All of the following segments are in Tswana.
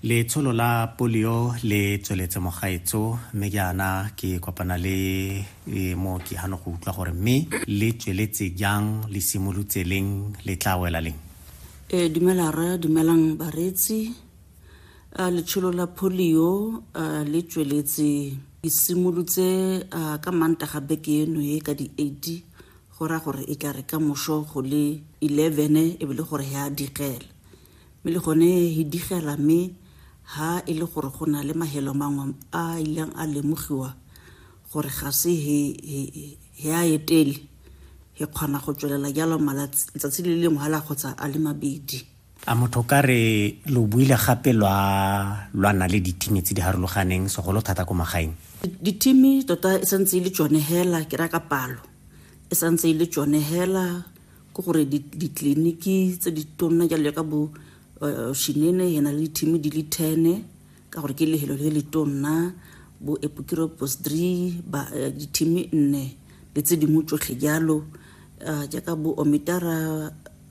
letsholo la polio le tsweletse mogaetso mme jaana ke kopana le e, mooki gano go utlwa gore mme le tsweletse jang le simolotse leng le tla wela leng e dumela rra dumelang bareetsi a letsholo la polio a le tsweletse ke simolotse ka mantaga beke eno e ka di-eighty Go raya gore e tla re ka moso go le eleven e be le gore he a digela, mme le gone he digela mme ha e le gore go na le mahelo mangwe a ileng a lemogiwa gore ga se he a etele he kgona go tswelela jalo malatsi letsatsi le lengwe hala kgotsa a le mabedi. a motho ka re lo buile gape lwa lwa na le ditimi tse di harologaneng segolo thata ko magaeng ditimi tota e santse e le tsone hela ke ra ka palo e santse e le tsone hela ke gore ditleliniki tse di tonna jalo ka bo eh, shinene ena le ditimi di le tene ka gore ke lehelo le le tonna bo epokiro bosdri eh, ditimi nne le tse dingwe tsotlhe jalo eh, jaaka bo omitara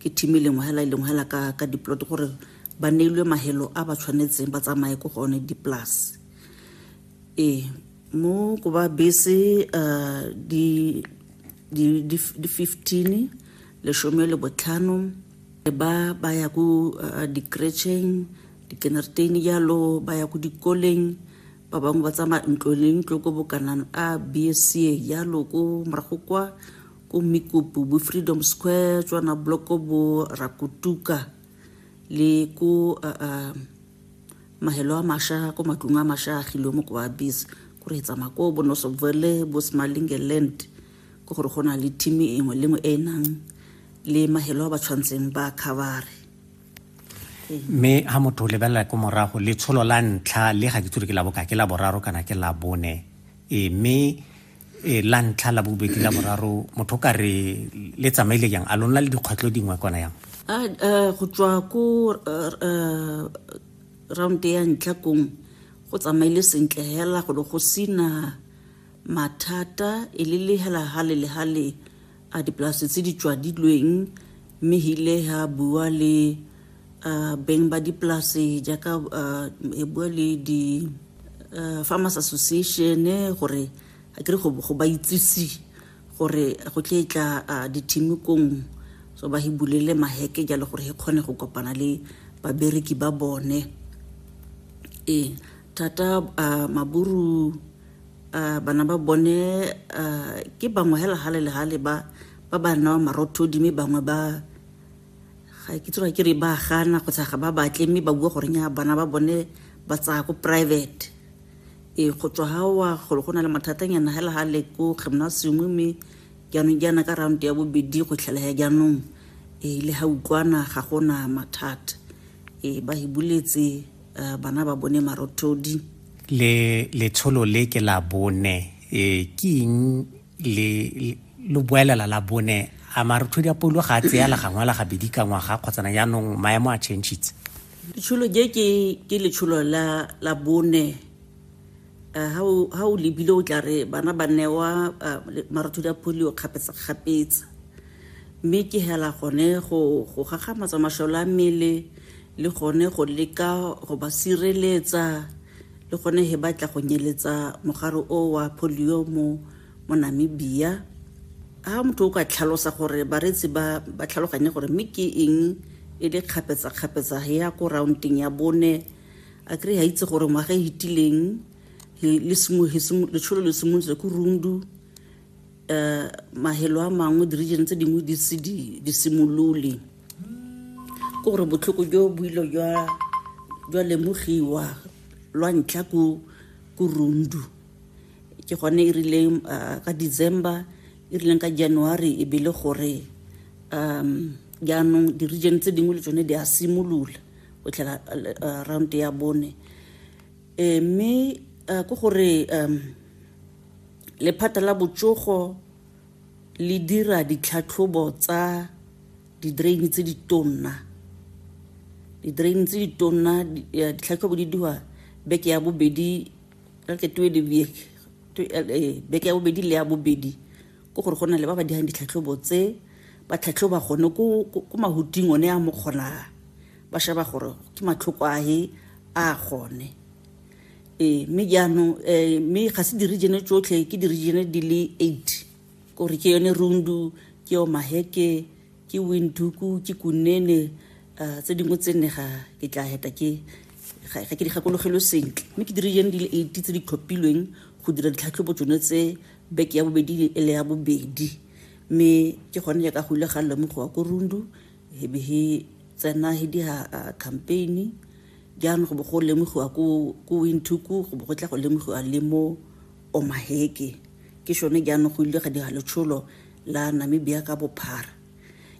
ke team e lengwe hela e lengwe hela ka ka diplot gore ba neilwe mahelo a ba tshwanetseng ba tsamaye ko gone di-plus ee mo ko ba bese uh, di, di, di, di 15 lesome le botlhano ba ba ya ko uh, di-cretcheng di-kindertain jalo ba ya ko dikoleng ba bangwe ba tsamaya ntlo le ntlo ko bokanang a bsa jalo ko morago kwa ko Mikupu, bo Freedom Square, tswana bloko bo Rakutuka le ko uh, uh, mahelo a masha ko matlong a masha a gilwe mo ko ba bis ko re etsa mako bo nosobvele bo smalinge land ko gore go na le team e nngwe le nngwe e nang le mahelo a ba tshwantseng ba khabare mme ha motho o lebelela ko morago letsholo la ntlha le ga ke tsore ke la boka ke la boraro kana ke la bone e mme e la ntlha la bobedi la boraro motho ka re le tsamaile yang a lona le dikgwetlho dingwe kona yang go tswa ko round ya ntlha kong go tsamaile sentle hela go go sina mathata e le le hela hale le hale a dipolase tse di tswadilweng mme hile ha bua le uh, beng ba dipolase jaaka uh, e bua le di uh, farmers association gore a kere go ba itsise gore go tle e tla uh, dithimikong so ba hibulele maheke jalo gore e kgone go kopana le babereki ba bone ee thata uh, maburu Uh, bana ba bone uh, ke bangwe hela gale le gale ba ba ba newa marothodi mme bangwe ba ga ke tsoga ke re ba gana kgotsa ga ba batle mme ba bua goreng ya bana ba bone ba tsaya ko private e go tswa ga wa golo go na le mathatanyana hela ga le ko gymnasium mme jaanong jaana ka round ya bobedi go tlhelaya jaanong e le ga utlwana ga gona mathata e ba e buletse uh, bana ba bone marothodi le letsholo le ke la bone e ke eng le lo boelela la bone a marothodi a polo ga a tseya la gangwe la gabedi ka ngwaga kgotsana jaanong maemo a changitse letsholo je ke letsholo la bone ha o lebile o tla re bana ba newa marothodi a polio kgapetsakgapetsa mme ke hela gone go gagamatsa masole a mmele le gone go leka go ba sireletsa le gone he batla go nyeletsa mogare o wa polio mo mo namibia ha motho o ka tlhalosa gore bareetsi ba ba tlhaloganye gore mme ke eng e le kgapetsakgapetsa ya ko rounding ya bone a kry ga itse gore ngwaga e fetileng letsholo le simolotse ko rundu um mahelo a mangwe di-region tse dingwe di se di simolole ke gore botlhoko jo boilo jwa lemogiwa lwa ntlha ko rundu ke gone e rileng um ka december e rileng ka january e bele gore um jaanong di-region tse dingwe le tsone di a simolola o tlhela uh, round ya bone e mme uh, ke gore um lephata la botsogo le dira ditlhatlhobo tsa di-drain tse di tonna di-drain tse di tonna ditlhatlhobo di diwa beke ya bobedi like two beke ya bobedi le ya bobedi ke gore go na le ba ba dirang ditlhatlhobo tse ba tlhatlhoba gone ko mahuting one a mo kgonang ba sheba gore ke matlhoko a he a gone ee mme jaanong um mme ga se di-regione tsotlhe ke di-regione di le eight kore ke yone rundu ke yo maheke ke winduku ke kunene um tse dingwe tse nne ga ke tla heta ke ga ke di gakologelwe sentle mme ke di-regione di le eight tse di tlhophilweng go dira ditlhatlhobo tsone tse Beke ya bobedi le ele ya bobedi mme ke gone ya ka go ile ga lemogiwa ko Rundu he be he tsena he dira campaign jaanong go bo go lemogiwa ko ko Windhoek go bo go tla go lemogiwa le mo Omaheke ke shone jaanong go ile ga dira letsholo la Namibia ka bophara